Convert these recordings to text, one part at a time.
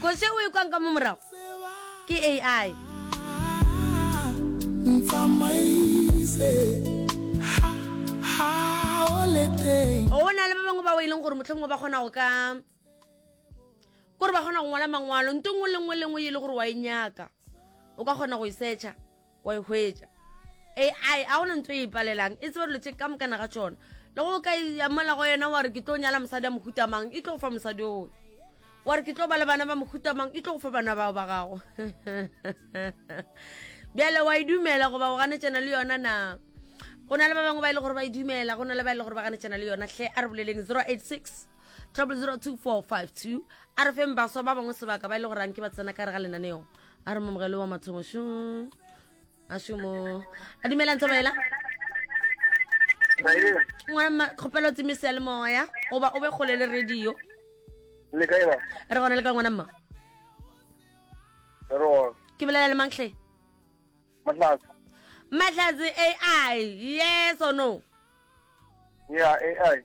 Kozi e o e kwang ka mo morago ke AI. Go na le ba bangwe bao e leng gore motlhomongwe ba kgona go ka kore ba kgona go ngwala mangwalo nto nngwe le nngwe le nngwe e le gore wa e nyaka o ka kgona go e searcha Wa e hwetša? AI a gona ntho e e palelang, e tseba dilo tše ka mokana ga tšona. Le go o ka iamela go yona wa re ke tlo nyala mosadi a mohuta mang, e tlo go fa mosadi oo. Wa re ke tlo ba le bana ba mohuta mang, e tlo go fa bana bao ba gago. Bjale wa e dumela goba o ganetšana le yona na? Go na le ba bangwe ba e le gore ba e dumela, go na le ba e le gore ba ganetšana le yona. Hle a re boleleng 086 Trouble 02452 a re feng baswa ba bangwe sebaka ba ile e go ranke ba tsena ka re ga lenaneo a re momogelo wa mathomo šo a šomo a dumelang tsabaela kgopelo tseme se le moya goba o be kgole le radio le kae ba re gona le ka ngwana mma ro ke bolela le manghle mahlatse mahlatse ai yes or no yeah ai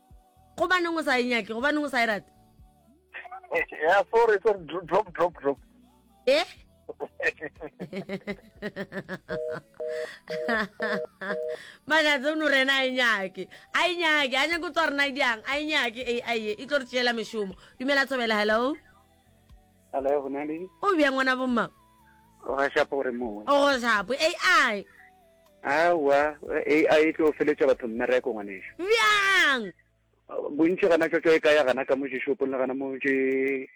gobaneng o sa e nyake gobaneng o sa e rate ya sorry sorry drop drop drop e magatse o no rena a e nyake a e nyake a nyake o tswa rena e diang a e nyake ai e tlo re tšeela mešomo dumela tshobela hello Hello, go na le? O bjang ngwana bo mang? O ga shapo gore mo. O go shapo AI. Awa, AI e tlo feletša batho mmereko ngwaneša. Bjang? Bontši gana tšotšo e ka ya gana ka mo šopong le gana mo tše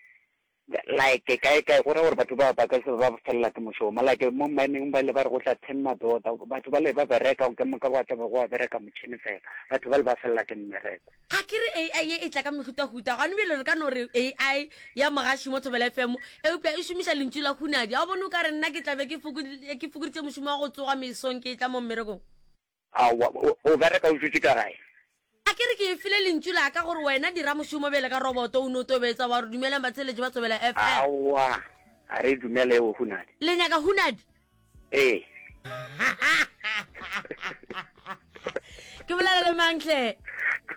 like kae kae go ra gore batho ba ba ka se ba felela ke mošomo like mo mining ba le ba re go tla ten madota batho ba le ba bereka ke moka go tla go bereka motšhini fela batho ba le ba felela ke mmereko Ga ke re AI ye e tla ka mehutahuta, gona bjale re ka no re AI ya mogaši mo Thobela FM, eupša e šomiša lentšu la hunadi. A o bone o ka re nna ke tla be ke fokoditše mošomo wa go tsoga mesong ke etla mo mmerekong? Aowa, o bereka o dutše ka gae. A ke re ke e file lentšu la ka gore wena dira mošomo bjale ka roboto, o no tobetsa wa re dumelang batheeletši ba Thobela FM. Aowa, ga re dumele eo hunadi. Le nyaka hunadi? ee ke bolela le mantle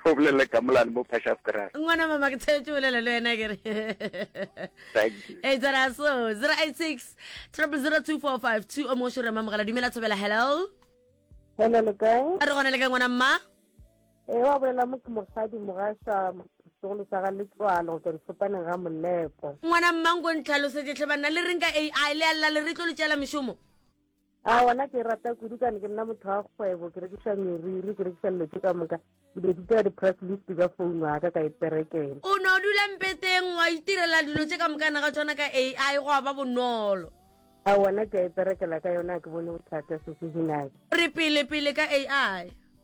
o bolele ka molane mo precious grass ngwana mama ke tsheletše bolela le wena kere e tsena so 086 30245 o mo šorema mogala dumela thobela hello hello le kae a re gona le ka ngwana mma e wa bolela mo ke mosadi mogaša segolo sa ga letswalo go tswa difopaneng ga molepo ngwana mmanko ntlhalosetse tlhe banna le reng ka ai le a le re tlo le tšela mešomo a ona ke rata kudu kane ke nna motho wa kgwebo ke rekisa meriri ke rekisa dilo tse ka moka ke be ditira di-press list ka founu aka ka eperekele o ne o dula mpeteng wa itirela dilo tse ka mokana ga tsona ka a i go a ba bonolo a ona ke a eperekela ka yona ke bone bothata se se dinake re pele pele ka a i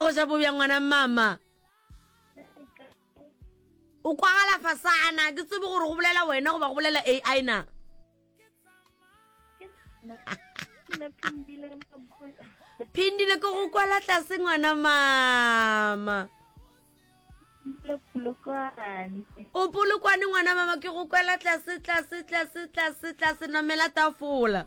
O ja bobjang ngwana mama? O kwagala fasana, ke tsebe gore go bolela wena goba go bolela AI na? Phindile ke go kwala tlase ngwana mama. O polokwane ngwana mama ke go kwela tlase tlase tlase tlase tlase namela tafola.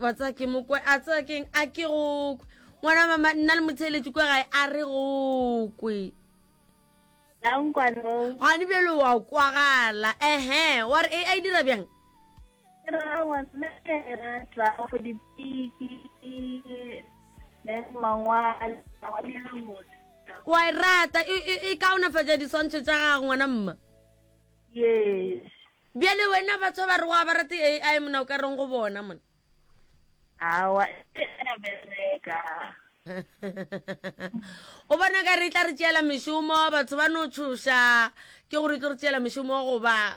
wa tsaya ke mokwe a tsaya keng a ke go kwe ngwana mama nna le motheletši kwa gae a re go kwe gane bjalo wa kwagala ehe wa re a e dira bjang ra wa mme ra tla go dipiki le mangwala wa dira motho o a e rata e, e, e kaonafatša diswantšho tša gago ngwana mma yes bjale wena batho ba re wa ba rate ai mona o ka reng go bona mona awa e a bereka o bona ka re tla re tšeela mešomo batho ba no tšhoša ke gore e tlo re tšeela mešomo goba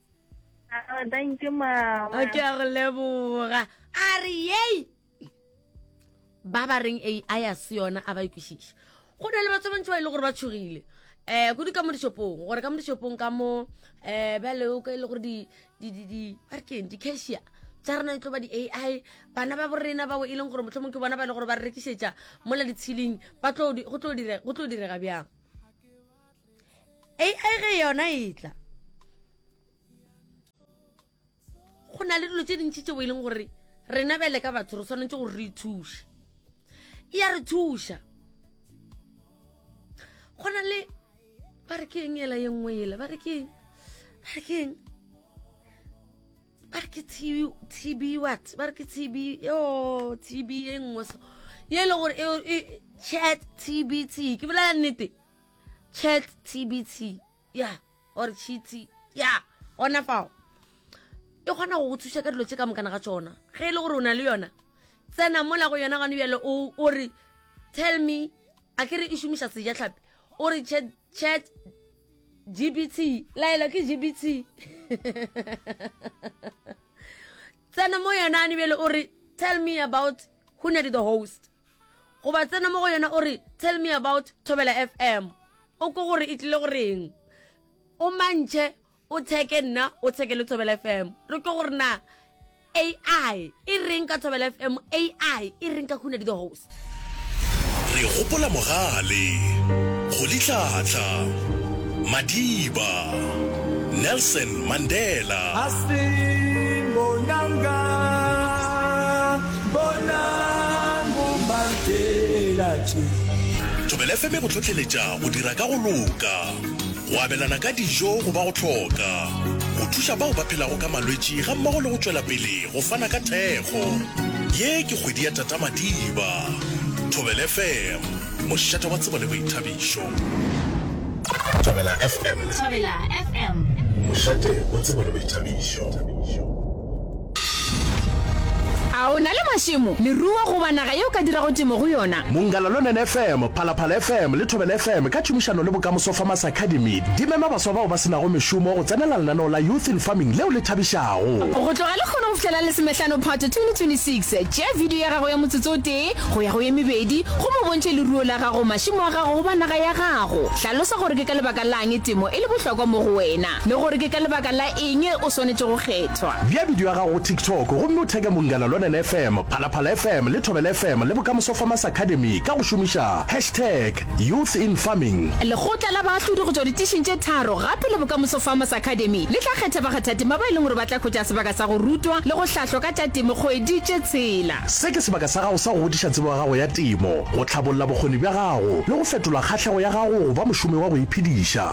Ah, thank you mama ke a go leboga a re yei ba ba reng a a ya se yona a ba ikwešiša go na le batho ba bantši ba e le gore ba tshogile um kudu ka mo dishopong gore ka mo dishopong ka mo um bjale o ka e le gore di ba re keng di-cashier tsa rena itlo ba di-ai bana ba borena bao e leng gore motlho mongwe ke bona ba e le gore ba re rekišetša mola ditshiling go tlo direga bjang ai ge yona e tla go na le dilo tse dintšhi tseo e leng gore rena bele ka batho re tshwanetse gore re ithuše e ya re thuša go na le ba re ke eng ela ye nngwe ela ba re ke eng ba re ke eng ba re ke tb what ba re ke tb yo tb e nngwe so ye e le gore chat tb t ke bolela nnete Chat TBT, ya, or chiti, ya, gona fao. E kgona go go thuša ka dilo tše ka mokana ga tšona. Ge e le gore o na le yona, tsena mola go yona gane bjale o re tell me a ke re e šomiša seja tlhapi o re chat chat gbt laela ke gbt tsena mo yona ane bjele o re tell me about who nedi the host goba tsena mo go yona o re tell me about thobela fm o ko gore e tlile goreng o mantšhe o tsheke nna o tsheke le thobela fm re ko gore na ai e reng ka thobela fm ai e reng ka khuna di the host re gopola mogale go litlhatla madiba nelson mandela Thobela FM e go hlohleletša go dira ka go loka, go abelana ka dijo go ba go hloka, go thuša bao ba phelago ka malwetši gammogo le go tšwela pele go fana ka thekgo. Ye ke kgwedi ya Tata Madiba. Thobela FM, mošate wa tsebo le boithabišo. Thobela FM, mošate wa tsebo le boithabišo. A o na le mašemo, leruo goba naga ye o ka dirago temo go yona? Mongalalonene FM, Phalaphala FM le Thobela FM ka tšhomišano le Bokamoso Farmers Academy di mema baswa bao ba se nago mešomo go tsenela lenaneo la Youth in Farming leo le thabišago. Go tloga lehono go fihlela Lesomehlano Phato 2026, tšea bidio ya gago ya motsotso o tee go ya go ye mebedi gomme o bontšhe leruo la gago, mašemo a gago goba naga ya gago. Hlalosa gore ke ka lebaka la'ng temo e le bohlokwa mo go wena. Le gore ke ka lebaka la eng o swanetše go kgethwa. Bea bidio ya gago go TikTok gomme o theke Mongala Lonene FM, Phalaphala FM le Thobela FM le Bokamoso Farmers Academy ka go šomiša hashtag Youth in Farming. Lekgotla la baahlodi go tšwa ditišing tše tharo gape le Bokamoso Farmers Academy le tla kgetha bakgathatema ba e leng gore ba tla hwetša sebaka sa go rutwa le go hlahlwa ka tša temo kgwedi tše tshela. Se ke sebaka sa gago sa go godiša tsebo ya gago ya temo, go hlabolla bokgoni bja gago le go fetola kgahlego ya gago go ba mošomi wa go iphediša.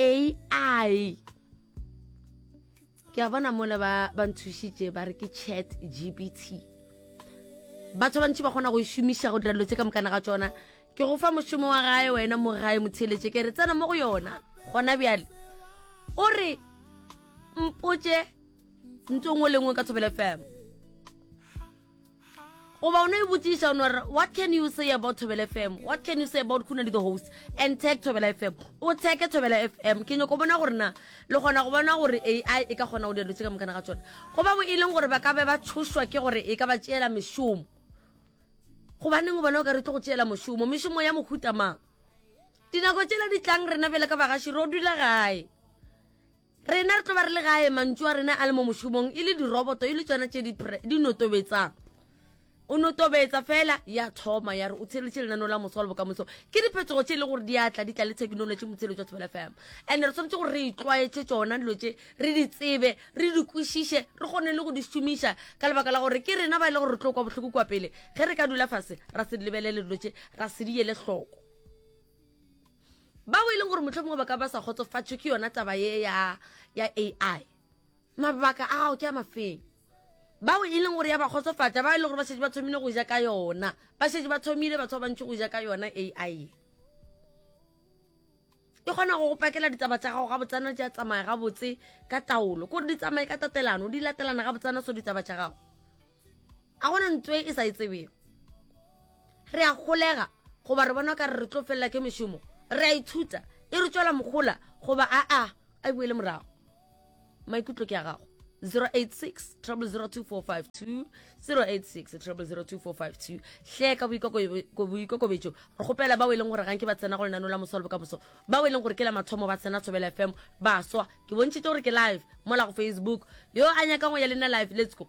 ai ai ke a bona mola ba ba nthušitše ba re ke chat gbt batho ba bantši ba kgona go e šomiša go dira dilo tse ka mokana ga tsona ke go fa mošomo wa gae wena mo gae motheletše ke re tsena mo go yona gona bjale o re mpotše ntho e nngwe le nngwe ka thobele fm goba o no e botsiša o no re what can you say about thobela fm what can you say about khuna le the host and tag thobela fm o tsheke thobela fm ke nyoko bona gore na le kgona go bona gore ai e ka kgona go dilo tse ka mokana ga tsone goba bo e leng gore ba ka be ba tshošwa ke gore e ka ba tšeela mešomo gobaneng o bona o ka re tlo go tšeela mošomo mešomo ya mohuta mang dinako tšela di tlang rena bjale ka bagaši ro dula gae Rena re tlo ba re le gae, mantšu a rena a le mo mošomong, e le diroboto, e le tšona tše di pre, di notobetsang. O notobetsa fela, ya thoma, ya re o tsheletše lenaneo la moso wa le bokamoso. Ke diphetogo tše e le gore di a tla, di tla le thekinolotši, motsheletšo wa Thobela FM. And re tshwanetse gore re itlwaetše tšona dilo tše, re di tsebe, re di kwešiše, re kgone le go di šomiša, ka lebaka la gore ke rena ba e le gore re tlo kwa bohloko kua pele, ge re ka dula fase, ra se di lebelele dilo tše, ra se di ele hloko. Bao e leng gore mohlomongwe ba ka ba sa kgotsofatšwe ke yona taba ye ya, ya AI, mabaka a gago ke a mafeng. Bao e leng gore ya ba kgotsofatša, bao e leng gore ba šetše ba thomile go ja ka yona, ba šetše ba thomile batho ba bantši go ja ka yona AI ye. E kgona go go pakela ditaba tša gago gabotsana, di a tsamaya gabotse ka taolo, kore di tsamaye ka tatelano, di latelana gabotsana so ditaba tša gago. a gona ntwe e sa e tsebego re a golega goba re bona ka re re tlo felela ke mešomo re a ithuta e re tswela mogola goba aa a e boele morago maikutlo ke a gago 086 002452 086 002452 hle ka boikokobetšo re kgopela bao e leng gore gang ke ba tsena go lenano la moso le bokamoso bao e leng gore ke la mathomo ba tsena thobela fm ba swa ke bontšhitse gore ke live mola go facebook yo a nyakang go ya le nna live let's go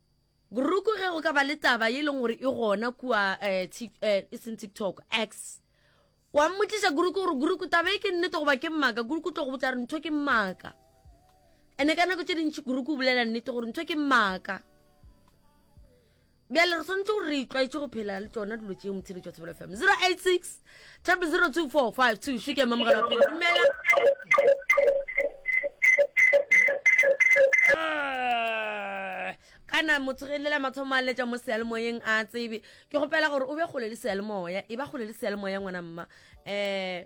Grouku ge go ka ba le taba ye e leng gore e gona kua eh, eh, e seng tiktok x wa mmotliša grouku gore grouku taba e ke nnete goba ke mmaka grouku tlo go botsa re ntho ke mmaka ene ka nako tse dintšhi grouku o bolela nnete gore ntho ke mmaka bjale re tshwanetse gore re itlwaetse go phela le tsona dilo tšeo motshebetsi wa tshebelo fm 086 Tap 0245 2 ke mamogela wa pele dumela Ah, kana motshogelelela mathomo a letša mo sealemoyeng a tsebe ke gopela gore o be kgole le sealemoya e ba kgole le sealemoya ngwana mma um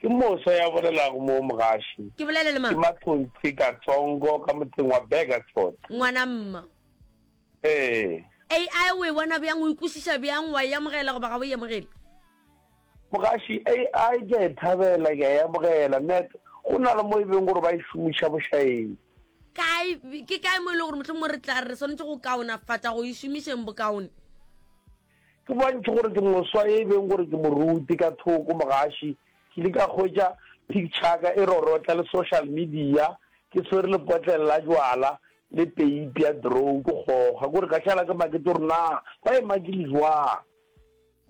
Ke Mosa ya bolelago mo mogaši. Ke bolele le mang? Ke Mathonsi Katsongo ka motseng wa Burgerton. Ngwana mma. Ee. AI o e bona bjang, o e kwešiša bjang, wa e amogela goba ga o e amogele? Mogaši, AI ke a e thabela, ke a e amogela. Net, go na le mo e beng gore ba e šomiša bošaeng. Kae, ke kae mo e lego gore mohlomongwe re tla re re swanetše go kaonafatša go e šomišeng bokaone? Ke bontši gore ke moswa e beng gore ke moruti. Ka thoko mogaši ke ile ka hwetša pikchaka e rorotla le social media ke swere lepotlele la jwala le peipi ya drow ke kgoga kore ka šala ke makete gore na ba e makile jwang.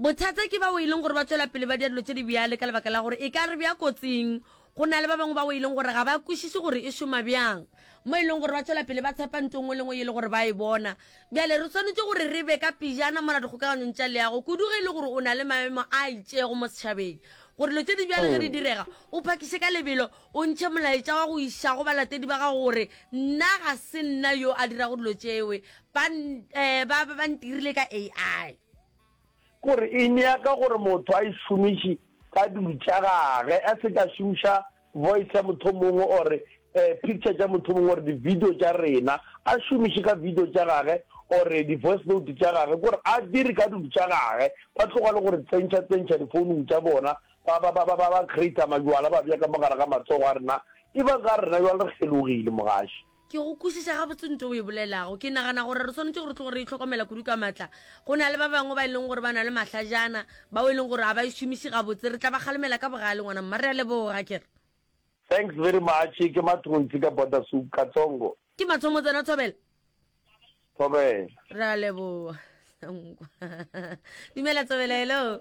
Bothata ke bao e leng gore ba tšwela pele ba dira dilo tše di bjale ka lebaka la gore e ka re bea kotsing Go na le ba bangwe bao e leng gore ga ba kwešiše gore e šoma bjang, mo e lego gore ba tšwela pele ba tshepa ntho e nngwe le e nngwe ye e lego gore ba e bona. Bjale re swanetše gore re be ka pejana mola dikgokaganyong tša leago, kudu ge e le gore o na le maemo a itšego mo setšhabeng, gore dilo tše di bjalo ge di direga, o phakiše ka lebelo, o ntšhe molaetša wa go iša go balatedi ba gago gore nna ga se nna yo a dirago dilo tšeo, ba, ba, ba ntirile ka AI. Gore e nyaka gore motho a e šomiši ka dulu tša gage, a se ka šomiša voice ya motho o mongwe or picture tša motho o mongwe or di-video tša rena, a šomiše ka video tša gage or di-voice note tša gage, kore a dire ka dulu tša gage, ba tloga le go re tsentšha tsentšha difounung tša bona, ba ba ba ba ba ba creator majwala ba bea ka mo gare ga matsogo a rena, e ba ka rena jwale re kgelogile, Mogaši. Ke go kwešiša gabotse ntho o e bolelago. Ke nagana gore re swanetše gore tlogo re itlhokomela kudu ka matla. Go na le ba bangwe ba e leng gore ba na le mahlajana, bao e leng gore ga ba e šomiše gabotse. Re tla ba kgalemela ka bogale, ngwana mma. Re a leboga, ke re. Thanks very much. Ke Mathonsi ka Border Soup, Katsongo. Ke Mathomo tsena, Thobela. Thobela. Re a leboga. Dumela, Thobela. Hello.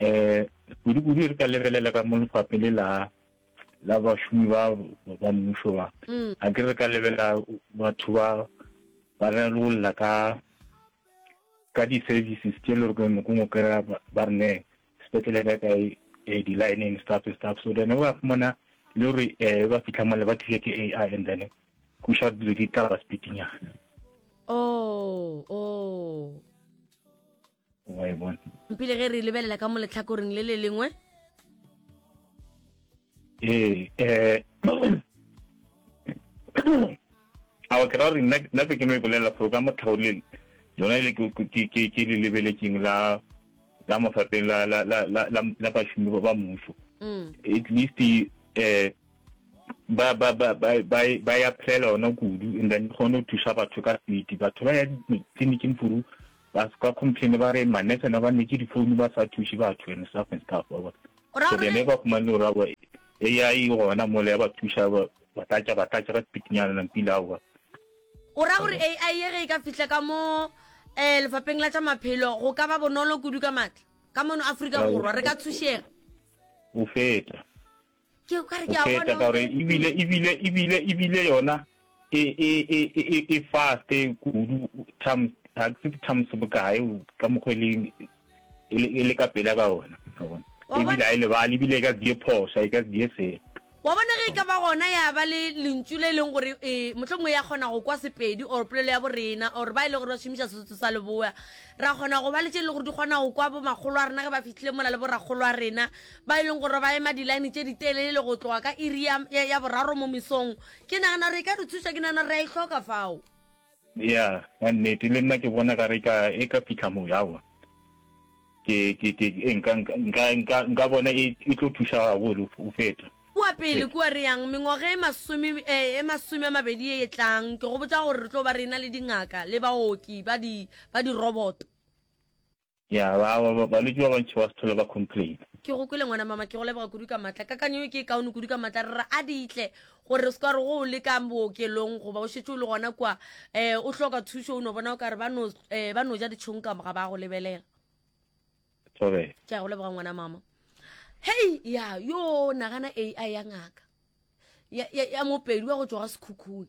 um kudu-kudu re ka lebelela ka mo lefaphe le la la bašomi ba ba mmušo ba mm. a ke re ka lebela batho ba ba ralolla ka ka di-services tše le gore noko ngwe kry-a ba re ne sepetlele ka kae um di-lining stuff stuff so then ba fumana le gore um ba fitlha mole ba thuse ke a i and then go sha dilo di tla ba speedinyana oh oh wa e bona mpile ge re lebelela ka mo letlhakoring le le lengwe ee eh, um ao ke ra gore nna be ke no e bolelela gore ka motlhaolele lona ele ke le lebeletseng la la mofapeng la la la la la bashumi ba mmuso mm. at least eh ba ba ba ba ba ya phela ona kudu and then gone o thusa batho ka seti batho ba ya tleliniking furu Ba se ka complain ba re ma nurse na ba nne tše di phone ba sa thuše batho and stuff and stuff wa bona. So then he ba fumane gore aowa AI e gona mole ya ba thuša ba ba tlatša ba tlatša ka speed nyana na mpile aowa. O ra gore AI ye ge e ka fihla ka mo eh lefapeng la tša maphelo go ka ba bonolo kudu ka matla ka mono Afrika Borwa re ka thušega. Go feta. go feta ka gore ebile ebile ebile ebile yona e e e e e fast kudu times ga se times bokae ka mokgweleng e le ka pela ka ona ebile a e lebale ebile e ka die phosa e ka die se wa bona ge e ka ba gona ya ba le lentšu le e leng gore e mohlomongwe ya kgona go kwa sepedi or polelo ya borena or ba e le gore ba šomiša sesotho sa leboa ra kgona go ba le tše e le gore di kgona go kwa bo makgolo a rena ge ba fitlhile mola le borakgolo a rena ba e leng gore ba ema dilaene tše ditelele go tloga ka iri ya, ya, ya boraro mo mesong. Ke nagana gore e ka re thuša, ke nagana re a e hloka fao. Ya, ya nnete, le nna ke bona ka re ka, e ka fihla moo, aowa. Ke, ke, ke, e, nka, nka, nka, nka, nka bona e, e tlo thuša gabotse go feta. Kua pele kua re yang, mengwaga e masome, e, e masome a mabedi ye e tlang, ke go botša gore re tlo ba re ena le dingaka le baoki ba di, ba diroboto. Ya ba ba balwetši ba bantši ba se thole ba complaina. Ke go kwele ngwana mama, ke go leboga kudu ka matla. Kakanyo ye ke e kaone kudu ka matla, re re a di tle gore o se ka wa re go o le ka bookelong goba o šetše o le gona kwa um o hloka thušo o no bona o ka re ba no um ba no ja ditšhong ka moga ba go lebelela. Sorry. Ke a go leboga ngwana mama. Hei ya yo nagana AI ya ngaka ya ya ya mopedi wa go tšwa ga sekhukhune.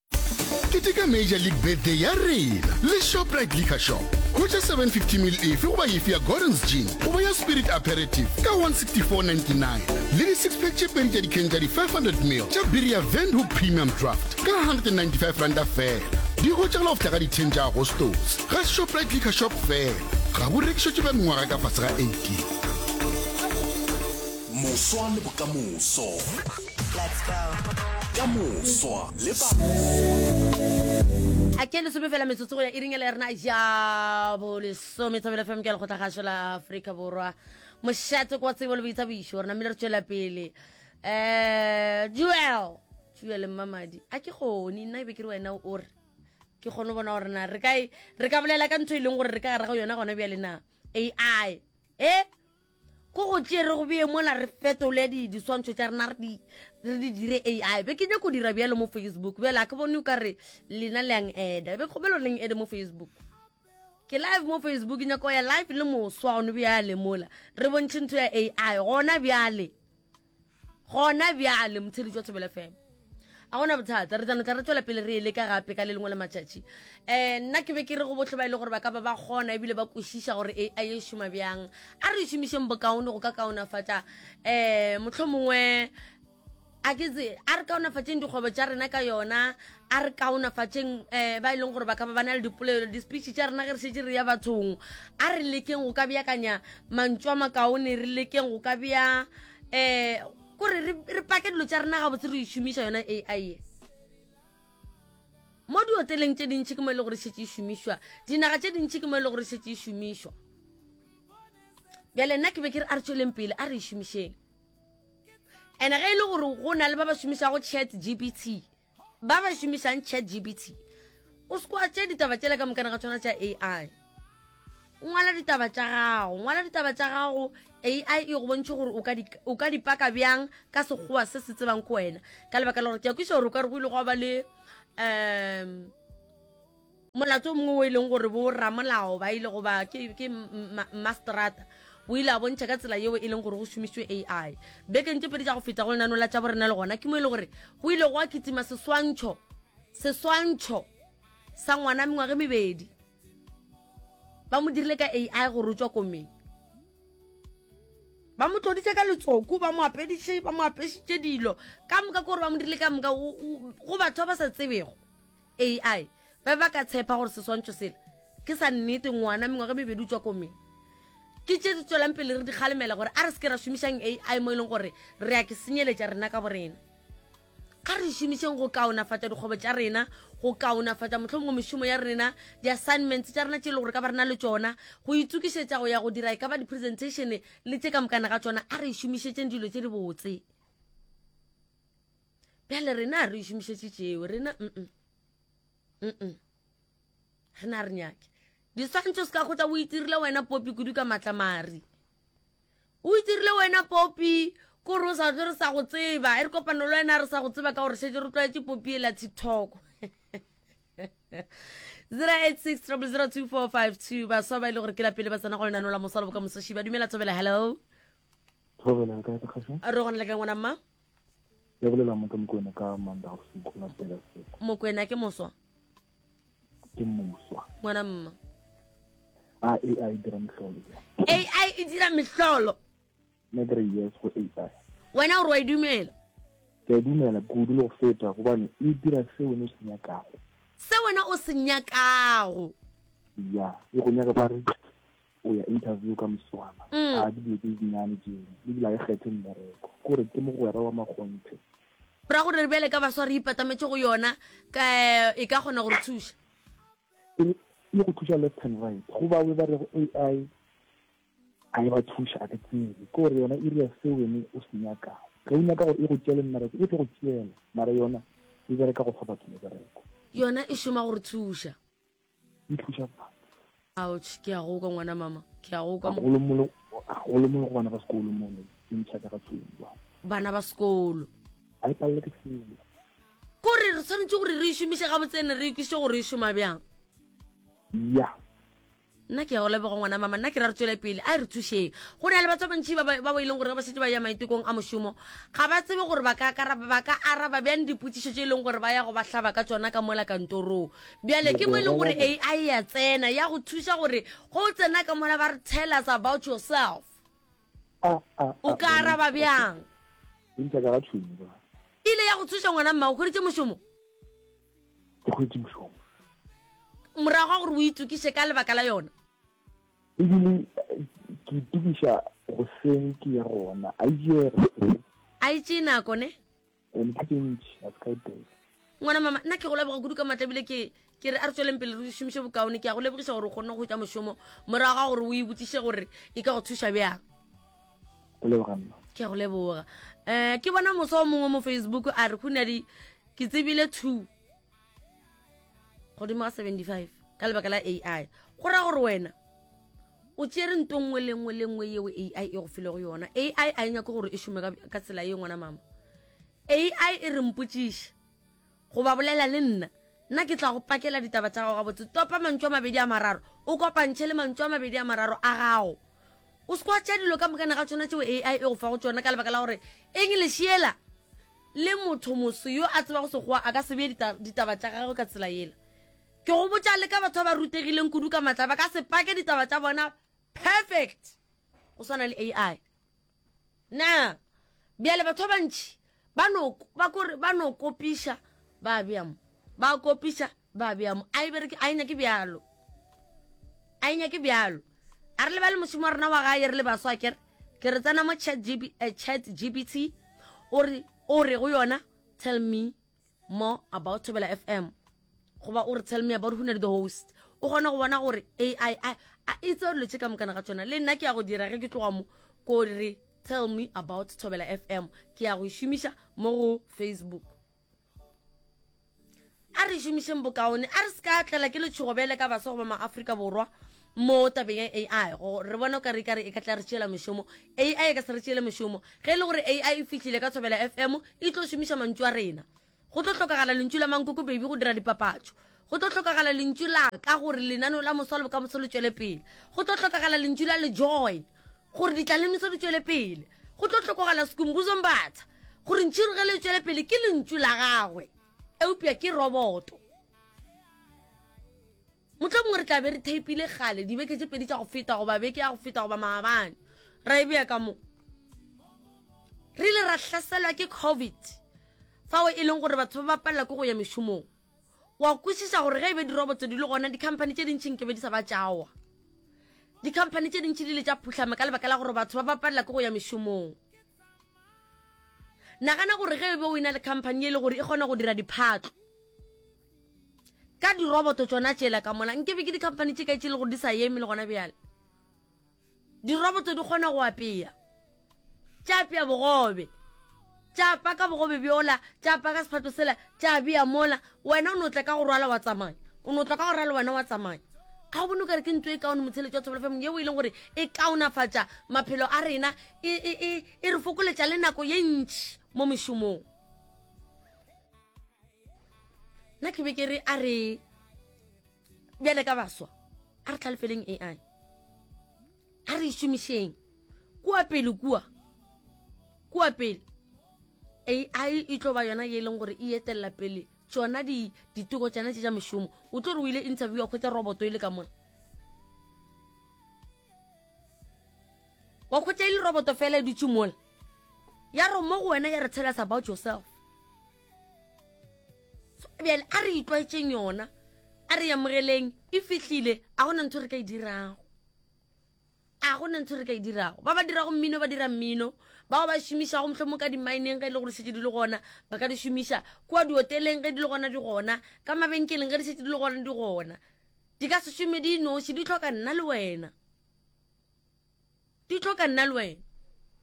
Keteka Major League Birthday ya rena le Shoprite Liquor Shop. Hwetša 750 ml efe goba efe ya Gordon's Gin goba ya Spirit Aperitif ka 164.99 le di-six-pack tše pedi tša dikheng tša di-500 ml tša biri ya Windhoek Premium Draft ka 195 ranta fela. Di hwetšagala go fihla ka di-10 tša Agostose ga Shoprite Liquor Shop fela. Ga bo rekišetšwe ba mengwaga ka fase ga 18. Moswa le bokamoso. Let's go. Ka moswa le ba. a ke lesome fela metsotso go ya e ringele rena ja bolesome thobela fm ke lekgotla gašo la aforika borwa mošate kwa tsebo le boitsa boišo rena mmele re tšwela pele um jewel jewel mmamadi a ke gone nna e be ke re wena o re ke kgone bona gore na re ka e, re ka bolela ka ntho e leng gore re ka gara go yona gona bjale na ai e Go go tšee re go beye mola re fetole di diswantšho tša rena re di re di dire ai be ke nyako dira bjalo mo facebook bjale a ke bone o ka re lena le yang eda be kgobelo reng ede mo facebook ke live mo facebook ke nyako ya live le moswa gone bjale mola re bontšhe ntho ya ai gona bjale gona bjale motshedi jwa thobela fm a gona bothata re tsanotla re tswela pele re e leka gape ka le lengwe la matšatši um nna ke be ke re go botlhe ba e le gore ba ka ba ba kgona ebile ba kwešiša gore e a e šoma bjang a re e šomišeng bokaone go ka kaonafatša um motlho mongwe a ke tse a re kaonafatšeng dikgwebo tša rena ka yona a re kaonafatšeng um ba e leng gore ba ka ba ba na le dipolelo di-speech tša rena ge re šetse re ya bathong a re lekeng go ka beakanya mantšu a makaone re lekeng go ka bea um kore re pake dilo tša rena gabotse re šomiša yona a i e mo dioteleng tše dintšhi ke mo e le gore šetse e šomišwa dinaga tše dintšhi ke mo e le gore šetse e šomišwa bjale nna ke be ke re a re tsweleng pele a re e šomišeng and ge e le gore go na le ba ba šomišago chat gpt Ba ba šomišang ChatGPT, o se kwa tše ditaba tšela ka mokana ga tšona tša AI. Ngwala ditaba tša gago, ngwala ditaba tša gago, AI e go bontšhe gore o ka di, o ka di paka bjang ka Sekgowa se se tsebang ko wena. Ka lebaka la gore ke a kwiša gore o ka re go ile gwa ba le um Molato o mongwe o e leng gore bo ramolao ba ile go ba ke, ke masterata o ile a bontšha ka tsela yeo e leng gore go šomiswe ai bekeng tše pedi tša go feta go lenano la tša borena le gona ke mo e le gore go ile go a kitima seswantšho seswantšho sa ngwana mengwage mebedi ba mo dirile ka ai go rotswa komeng ba mo tloditse ka letsoku ba mo apediše ba mo apešitše dilo ka moka ke gore ba mo dirile ka moka go batho ba ba sa tsebego ai ba ba ka tshepa gore seswantšho sela ke sa nnete ngwana mengwaga mebedi o tswa komeng ke tše di tswelang pele re di kgalemela gore a re se ke ra šomišang ai mo e leng gore re ya ke senyeletša rena ka borena ga re šomišeng go kaonafatša dikgwebo tša rena go kaonafatša motlho mongwe mešomo ya rena di-assignments tša rena tše e le gore ka ba rena le tsona go itsokišetša go ya go dira e ka ba di-presentation le tše ka mokana ga tsona a re e šomišetšeng dilo tše di botse bjale rena a re šomišetše tšeo rena mm mm rena re nyake diswantšho se ka kgotla o itirile wena popi kudu ka matlamari o itirile wena popi kore o sa tle re sa go tseba e re kopano le wena re sa go tseba ka gore šetse re tlwaetse popi e la tiktok 08600245 baswa ba e le gore ke la pele ba tsena go lenano la mosalo boka mosoši ba dumela thobela hello re gona le ka ngwana mma ya bolela motho mokwena ka manda go se ikgola pela seko mokwena ke moswa ke moswa ngwana mma a ai dira mehlolo ai e dira mehlolo ne kere yes go ai wena gore wa e dumela ke a dumela kudu le go feta gobane e dira se wena o se nyakago se wena o se nyakago ya e go nyaka ba re o ya interview ka moswana mm. a dibile tse dinyane jeno le dila e kgethe mmereko kore ke mogwera wa makgonthe ra gore re bjale ka baswa re ipatametse go yona ka e ka kgona gore thuša e le go thuša left and right go ba we ba re go ai a e ba thuša a ke tsebe ke gore yona e ria se wene o se nyakago ge o nyaka gore e go tšele mmereko e tlo go tšela mara yona e bereka go fa batho mebereko yona e šoma gore thuša Ouch, ke a go kwa ngwana mama, ke a go kwa. Golo mo le go bana ba sekolo mo ne, ke ntšha ka tsumba. Bana ba sekolo. A e palle ke selo. Kore re tshwanetse gore re ishomise ga botsene re ikise gore e shoma byang. Ya. Nna ke ya go leboga ngwana mama, nna ke ra re tswele pele, a e re thušeng. Go na le batho ba bantši ba ba ba e leng gore ba šetse ba ya maitekong a mošomo, ga ba tsebe gore ba ka ba ka araba byang dipotšišo tše e leng gore ba ya go ba hlaba ka tšona ka mola kantorong. Bjale ke mo e leng gore AI ya tsena ya go thuša gore go tsena ka mola ba re tell us about yourself. Ah, ah, ah, o ka araba bjang? Ntša ka ga tšhomo ba. Ile ya go thuša ngwana mma o khweditše mošomo? Ke khweditše mošomo. Morago ga gore o itukiše ka lebaka la yona? Ebile ke itukiša goseng ke ya gona. A itše goseng. A itše nako ne? ngwana mama nna ke go leboga kudu ka maatla bile ke ke re a re tsweleng pele re šomiše bokaone ke ya go lebogiša gore o kgonne go tša mošomo morago ga gore o e botsiše gore e ka go thuša bjang ke ya go leboga um ke bona moso o mongwe mo facebook a re go ne di ke tsebile two godimo ga 75 ka lebaka la ai go ra gore wena o tšere nto nngwe le nngwe le nngwe yeo ai e go filego yona ai a e nyake gore e šome ka tsela ye ngwana mama ai e re mpotsiše goba bolela le nna nna ke tla go pakela ditaba tsa gago gabotse topa mantšu a mabedi a mararo o kopantšhe le mantšu a mabedi a mararo a gago o se kwa tša dilo ka mokane ga tshwana tšeo ai e go fa go tsona ka lebaka la gore english yela Le motho moso yo a tsebago Sekgowa a ka se bee ditaba tša gagwe ka tsela yela. Ke go botša le ka batho ba ba rutegileng kudu ka matla ba ka se pake ditaba tša bona perfect go swana le AI. Na bjale batho ba bantši ba no ba kore ba no kopiša ba bea mo ba kopiša ba bea mo a e bereke a e nyake bjalo a e nyake bjalo a re lebale mošomo wa rena wa gae re le baswa kere ke re tsena mo chat eh, gbt o re o re go yona tell me more about thobela fm goba o re tell me about hunedi the host o kgone go bona gore ai a itse gore lotse ka mokana ga tsona le nna ke ya go dira ge ke tloga mo ko re tell me about thobela fm ke ya go e šomiša mo go facebook a re šomišeng bokaone a re se ka tlela ke letšhogo bjale ka baswa goba maaforika borwa mo tabeng ya ai go re bona o ka re kare e ka tla re tšeela mešomo ai e ka se re tšeele mešomo ge e le gore ai e fihlile ka tshobela fm e tlo šomiša mantšu a rena go tlo tlhokagala lentšu la mankoko baby go dira dipapatšo Go tlo hlokagala lentšu la ka gore lenaneo la moso wa lebokamoso le tšwele pele. Go tlo hlokagala lentšu la lejoy gore ditlalemiso di tšwele pele. Go tlo hlokogala sekumbuzo mbatha gore ntšhirogelo e tšwele pele ke lentšu la gagwe eupša ke roboto motlho mongwe re tla be re theipile gale dibeke tše pedi tša go feta goba beke ya go feta goba maabane ra e bea ka mo re ile ra hlaselwa ke covid fao e leng gore batho ba ba palela ke go ya mešomong wa kwešiša gore ge e be dirobotso di le gona dikhamphani tše dintšhi nke be di sa ba tšawa dikhamphani tše dintšhi di le tša phuhlame ka lebaka la gore batho ba bapalela ke go ya mešomong nagana gore ge e be o ena le khamphani e le gore e kgona go dira diphatlo ka diroboto tsona tšela ka mola nke be ke dikhamphani tše kae tše e le gore di sa eme le gona bjale Diroboto di kgona go apea. Tša apea bogobe. Tša paka bogobe bjola, tša paka sephato sela, tša bea mola. Wena o no tla ka go rwala wa tsamaya. O no tla ka go rwala wena wa tsamaya. Ga o bone o ka re ke ntlo e kaone motheletšo wa Thobela FM yeo e leng gore e kaonafatša maphelo a rena, e, e, e, e re fokoletša le nako ye ntši mo mešomong. Nna ke be ke re a re bjale ka baswa a re tlhalefeleng ai a re šomišeng kua pele kua kua pele ai e tlo ba yona ye e leng gore e etelela pele tsona ditoko tsena tse tša mešomo o tlo re o ile interviewa kgwetsa roboto e le ka mona wa kgwetsa e le roboto fela e dutše mola ya re mo go wena ya re tell us about yourself bjale a re itlwaetseng yona a re yamogeleng e fihlile a gona ntho re ka e dirago a gona ntho re ka e dirago ba ba dirago mmino ba dira mmino bao ba šomišago motlho mo ka dimaeneng ge e le gore šetse di le gona ba ka di šomiša kua dioteleng ge di le gona di gona ka mabenkeleng ge di šetse di le gona di gona di ka se šome di noši di tlhoka nna le wena di tlo ka nna le wena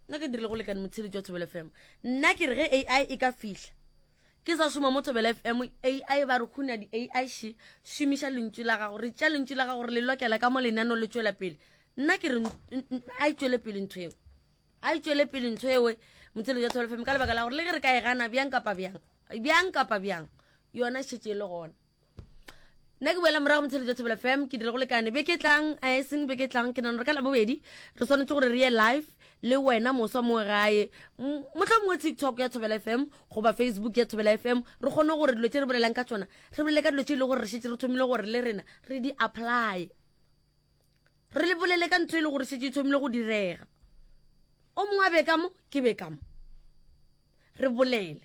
nna ke dirile go lekane motsheletši wa thobelo fm nna ke re ge ai e ka fihla ke sa šoma mo thobelo fm ai ba re kgona di-ai she šomiša lentšu la gago re tša lentšu la gago re le lokela ka mo lenano le tšwela pele nna ke re a e tšwele pele ntho eo a e tšwele pele ntho ewe motsheletši wa thobelo fm ka lebaka la gore le ge re ka e gana bjang kapa bjang bjang kapa bjang yona šetse e le gona nna ke boela morago motsheletso ya thobela fam ke dire go lekane be ke tlang a e seng be ke tlang ke nano re ka labobedi re tshwanetse gore re ye live le wena moswa mo gae motlha mongwe tiktok ya thobela fm goba facebook ya thobela fm re kgone gore dilo tse re bolelang ka tsona re bolele ka dilo tse e le gore re šetse re thomile gore le rena re di apply re le bolele ka ntho e le gore šetse e thomile go direga o mongwe a be ka mo ke be ka mo re bolele